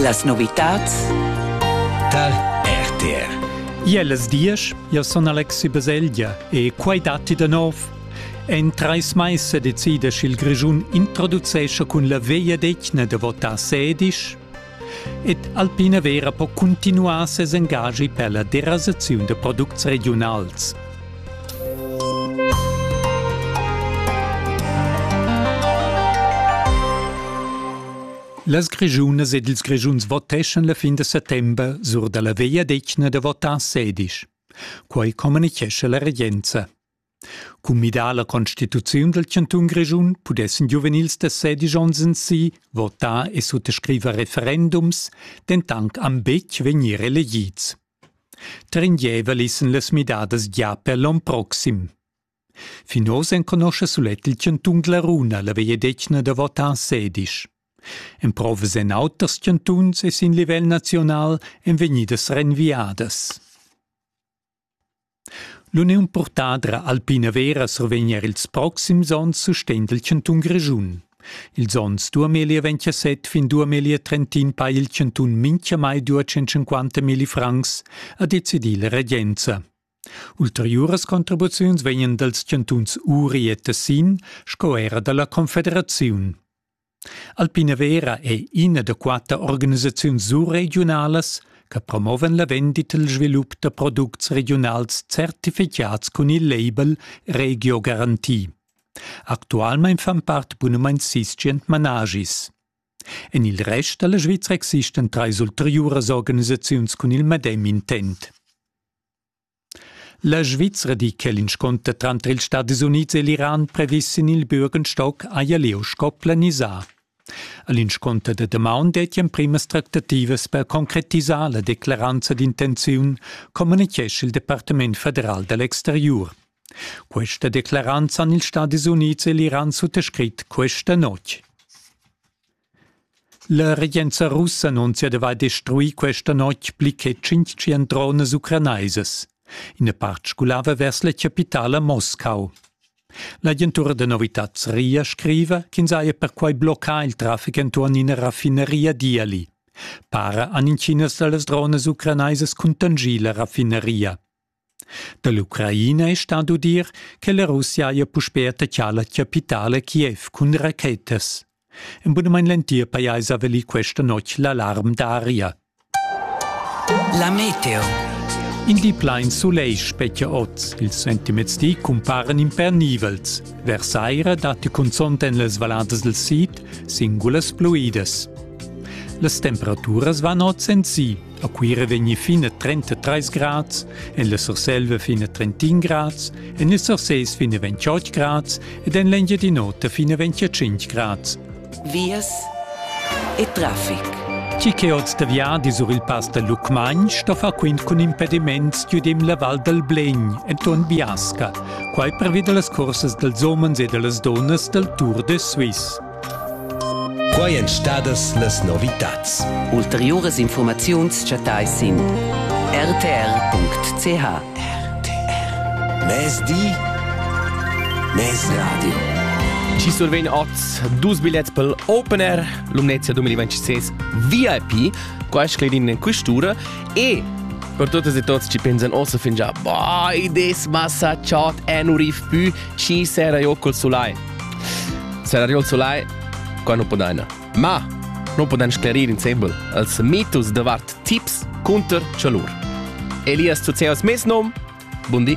Las novitads tar RTR. Iellas diesch, io sun Alexi Baselgia e quai datti da nov. En trais mais se decide sch'il Grischun introducesce cun la veia degna de votà sedisch ed Alpina Vera po cuntinuar ses engagi per la derasaziun de products regionals. Las Grischunas ed ils Grischuns voteschan la fin da settember sur da la vegliadetgna da votar sedisch. Quai communichescha la regenza. Cun midar la constituziun dal chantun Grischun pudessan giuvenils da sedisch onns en si votar e suttascriver referendums, dentant am betg vegnir elegids. Tringeva l'issen las midadas gia per l'on proxim. Fin oz enconoscha sulet il chantun Glaruna la vegliadetgna da votar en sedisch. Emprovas en auters chantuns e sin livel naziunal èn vegnidas renviadas. L'uniun purtadra alpina vera survegn er ils proxims onns sustegn dal chantun Grischun. Ils onns duamilli ventasett fin duamilli trentin pa il chantun minchamai dua 150 milli francs, ha decidì la regenza. Ulteriuras contribuziuns vegnan dals chantuns Uri e Tessin sco era da la Confederaziun. Alpinavera è ina da quatter organisaziuns surregiunalas che promovan la vendita e il svilup da products regiunals certificads cun il label Regio Garanti. Actualmein fan part bunumein sis tschient managis. En il rest da la Svizra existan trais ulteriuras organisaziuns cun il medem intent. La Svizra di che l'inscunter tranter ils Stadis Unids e l'Iran previs sin il Bürgenstock haja lieu sco planisà. A l'inscunter da damaun detti emprimas tractativas per concretisar la declaranza d'intenziun, communitgescha il Departament federal da l'exteriur. Questa declaranza han ils Stadis Unids e l'Iran suttascrit questa notg. La regenza russa annunzia d'avair destruì questa notg pli che tschintgient dronas ucranaisas. Ina part sgulava vers la chapitala Moscau. L'agentura da novitads RIA scriva ch'ins haja perquai bloccà il traffic enturn ina raffinaria Diali. Para han intginas da las dronas ucranaisas cuntanschì la raffinaria. Da l'Ucraina è stà d'udir che la Russia haja puspè attaccà la chapitala Kiev cun rachetas. En bunamain l'entir pajais ha valì questa notg l'alarm d'aria. La meteo. In di plain sulegl spetga oz. Ils sentiments di cumparan impernivels. Vers saira datti cunzont en las valladas del sid singulas pluidas. Las temperaturas van oz en si A Cuira vegni fin a 33 grads, en la Surselva fin a 31 grads, en il Surses fin a 28 grads ed en l'Engiadin'Ota fin a 25 grads. Vias e traffic. Chi che oz da viadi sur il pass da Lucmagn sto far quint cun impediments giudim la Val dal Blegn enturn Biasca, quai pervi da las cursas dals umens e da las dunnas dal Tour de Suisse. Quai èn stadas las novitads. Ulteriuras infurmaziuns chattais sin rtr.ch. RTR. Mezdi. Mezradio. Ci survegn oz dus bilets pel Open Air Lumnezia 2026 VIP, qua scledin in questura e per totes e tots ci pensan ossa fin già, bah, i des massa chat en urif pü, ci sera io col sulai. Serariol Sulai, qua non podaina. Ma non podan sclerir insembel als mitus davart tips cunter chalur. Elias Zuzeos mes nom. Bundi.